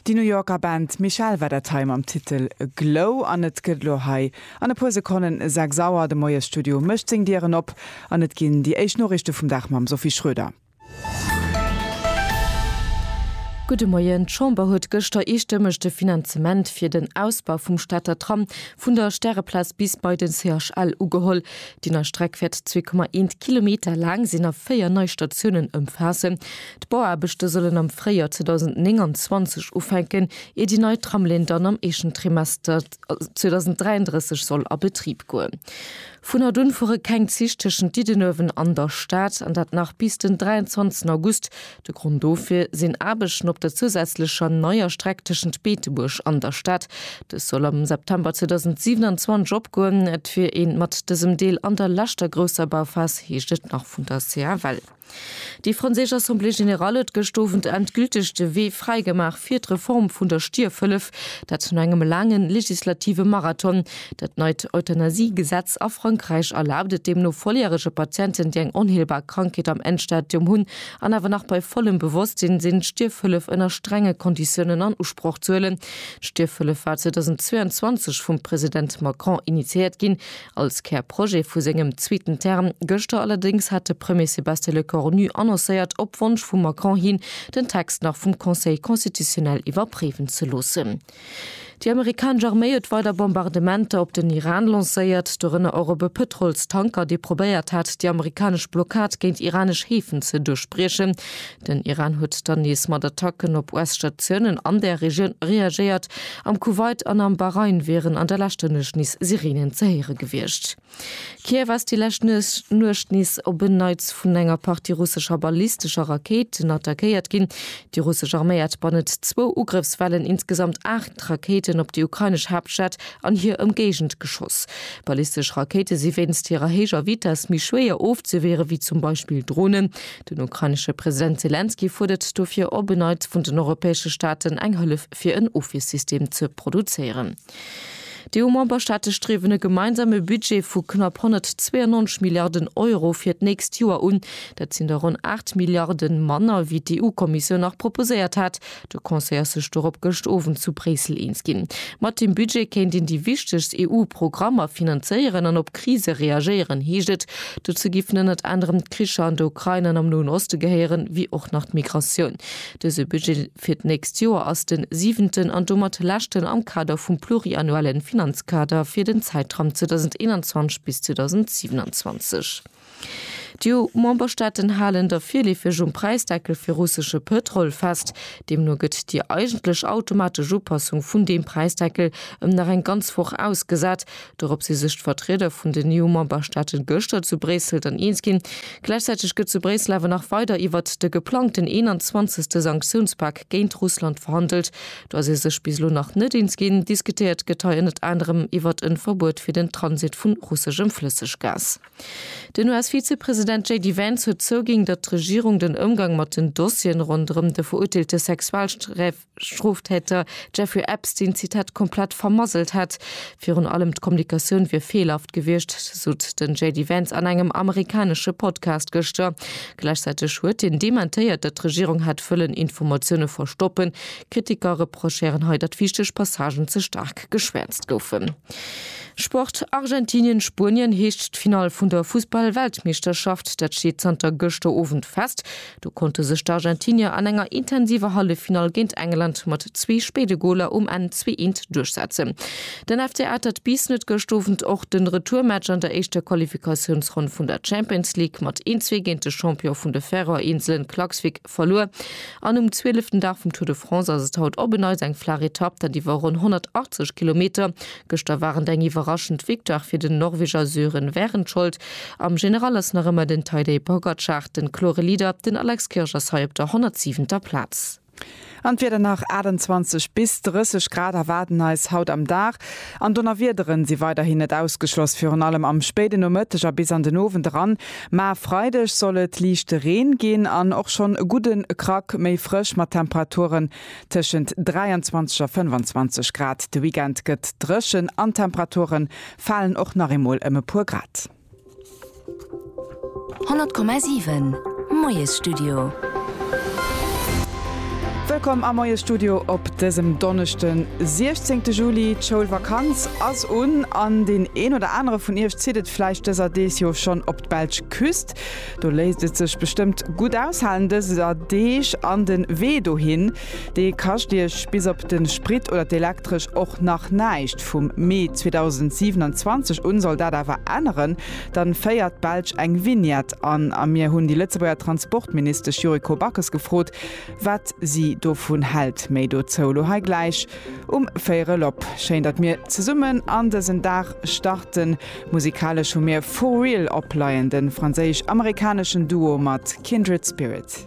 Déi New Yorker Band Michelle war dat hei mam Titel Glow an et gëtt elo hei an e puer Sekonnen 6 Auer. De Moies Studio mécht seng Dieren op an et ginn déi éischt Noriichte vum Dag mam Sophie Schroeder. Gudde Moien. D'Chamber huet gëschter eestëmmeg de Finanzement fir den Ausbau vum Stater Tram vun der Stäreplaz bis bei den CHL ugeholl. Déi nei Streck wäert 2,1 Kilometer laang sinn a 4 nei Statiounen ëmfaassen. D'Bauaarbechte sollen am Fréijoer 2029 ufänken, ier déi nei Tramlinn dann am éischten Trimester 2033 soll a Betrib goen. Vun haut un fuere keng Zich tëschent Diddenuewen an der Stad, an dat nach bis den 23 August. De Grond dofir sinn Aarbechten op der zousätzlecher neier Streck tëschent Beetebuerg an der Stad. Dës soll am September 2027 opgoen. Et wier ee mat dësem Deel an der leschter grousser Bauphas, heescht et nach vun der CFL. Déi franséisch Assemblée générale huet gëscht Owend endgülteg de Wee fräi gemaach fir d'Reform vun der Stierfhëllef, dat no engem laange legislative Marathon. Dat neit Euthanasie-Gesetz a Frankräich erlaabt et deemno volljärege Patienten, déi eng onheelbar Krankheet am Endstadium hunn an awer nach bei vollem Bewosstsinn sinn, d'Stierfhëllef ënner strenge Konditiounen an Usproch ze huelen. D'Stierfhëllef war 2022 vum President Macron initiéiert ginn, Als Kärprojet vu sengem zweeten Term gëschter allerdéngs hat de Premier Sébastien Lecornu annoncéiert, op Wonsch vum Macron hin, den Text nach vum Conseil constitutionnel iwwerpréiwen ze loossen. Déi amerikanesch Arméi huet weider Bombardementer op den Iran lancéiert, dorënner och op e Pëtrolstanker, dee probéiert hat, déi amerikanesch Blockad géint iranesch Häfen ze duerchbriechen. Den Iran huet dann nees mat Attacken op US-Statiounen an der Regioun reagéiert. Am Kuwait an am Bahrain wieren an der leschter Nuecht nees Sireenen ze héiere gewiescht. Kiew ass déi lescht Nuecht nees op en Neits vun enger Partie russescher ballistescher Rakéiten attackéiert ginn. Déi russesch Arméi hat bannent zwou Ugrëffswellen insgesamt aacht Rakéiten op déi ukrainesch Haaptstad an hir Ëmgéigend geschoss. Ballistesch Rakéite si wéinst hirer héijer Vitess méi schwéier ofzewiere wéi zum Beispill Dronen. Den ukrainesche President Selenskyj fuerdert dofir op en Neits vun den europäesche Staaten eng Hëllef fir en Ofwiersystem ze produzéieren. D'EU-Memberstaate striewen e gemeinsame Budget vu knapp 192 Milliarden Euro fir d'nächst Joer un. Dat sinn der ronn 8 Milliarde manner, wéi d'EU-Kommissioun nach proposéiert hat, De Conseil ass sech dorop gëscht Owend zu Bréissel eens ginn. Mat deem Budget kéint een déi wichtegst EU-Programmer finanzéieren an op Krise reagéieren, heescht et. Dozou giffen ënnert anerem d'Kricher an der Ukrain an am Noen Oste gehéieren, wéi och nach d'Migratioun. Dëse Budget fir d'nächst Joer ass de siwenten an domat leschten am Kader vum pluriannuelle Finanzkader fir den Zäitram 2021 bis 2027. D'EU-Memberstaaten halen da virleefeg um Präisdeckel fir russesche Pëtrol fest. Deemno gëtt déi eigentlech automatesch Upassung vun deem Präisdeckel ëm nach eng ganz Woch ausgesat. Dorop si sech d'Vertrieder vun den EU-Memberstaate gëschter zu Bréissel dann eens ginn. Gläichzäiteg gëtt zu Bréissel awer nach weider iwwert de geplangten 21. Sanktiounspak géint Russland verhandelt. Do ass ee sech bis elo nach net eens ginn. Diskutéiert gëtt hei ënnert anerem iwwert e Verbuet fir den Transit vu russeschem Flësseggas. Den US-Vizepresident JD Vance huet zouginn, datt d'Regierung den Ëmgang mat den Dossieren ronderëm de verurteelte Sexualstroftäter Jeffrey Epstein, Zitat, komplett vermasselt hätt. Virun allem d'Kommunikatioun wier feelhaft gewiescht, sot den JD Vance an engem amerikanesche Podcast gëschter. Gläichzäiteg huet hien dementéiert, datt d'Regierung hätt wëllen Informatioune verstoppen. Kritiker reprochéieren hei, datt wichteg Passagen ze staark geschwäerzt goufen. Sport, Argentinien, Spuenien heescht d'Finall vun der Fussball-Weltmeeschterschaft. Dat steet zanter gëschter Owend fest. Do konnte sech d'Argentinier an enger intensiver Halleffinall géint England mat zwee spéide Goler um Enn 2, 1 duerchsetzen. Den FC atert bis net gëscht Owend och de Retourmatch an der éischter Qualifikatiounsronn vun der Champions League mat een, zwee géint de Champion vun de Färöer-Inselen Klaksvík. Verluer an um zwieleften Dag vum Tour de France ass et haut op en Neits eng flaach Etapp, dat iwwer ronn 180 Kilometer. Gëschter waren et eng iwwerraschend Victoire fir den Norweger Sören Wærenskjold. Am General ass nach ëmmer den Tadej Pogacar den klore Leader, den Alex Kirsch ass hei op der 107. Plaz. An d'Wieder nach, 28 bis 30 Grad erwaarden eis haut am Dag an Donnerwiederen si weiderhin net ausgeschloss, virun allem am spéiden Nomëtteg a bis an den Owend eran. Mä Freideg soll et liichte Reen ginn an och schonn e gudde Krack méi frësch mat Temperaturen tëschent 23 a 25 Grad. De Weekend gëtt dréchen an d'Temperature falen och nach eemol ëm e puer Grad. 100,7 Moiesstudio. Wëllkomm am Moie Studio op dësem Donneschden, 16 Juli. D'Schoulvakanz ass un an deen een oder anere vun Iech zitt et vläicht dëser Deeg jo schonn op d'belsch Küst. Do léisst et sech bestëmmt gutt aushalen dëser Deeg an den Wee dohin, dee kascht Iech bis op den Sprit oder d'Elektresch och nach näischt. Vum Mee 2027 un soll dat awer änneren, dann féiert d'Belsch eng Vignette an a mir hunn déi Lëtzebuerger Transportministesch Yuriko Backes gefrot, wat si dovun hält. Méi dozou elo hei gläich um Véierel op. Schéin, datt mir zesummen an dësen Dag starten. Musikalesch hu mir For Real opleien, de franséisch-amerikaneschen Duo mat Kindred Spirit.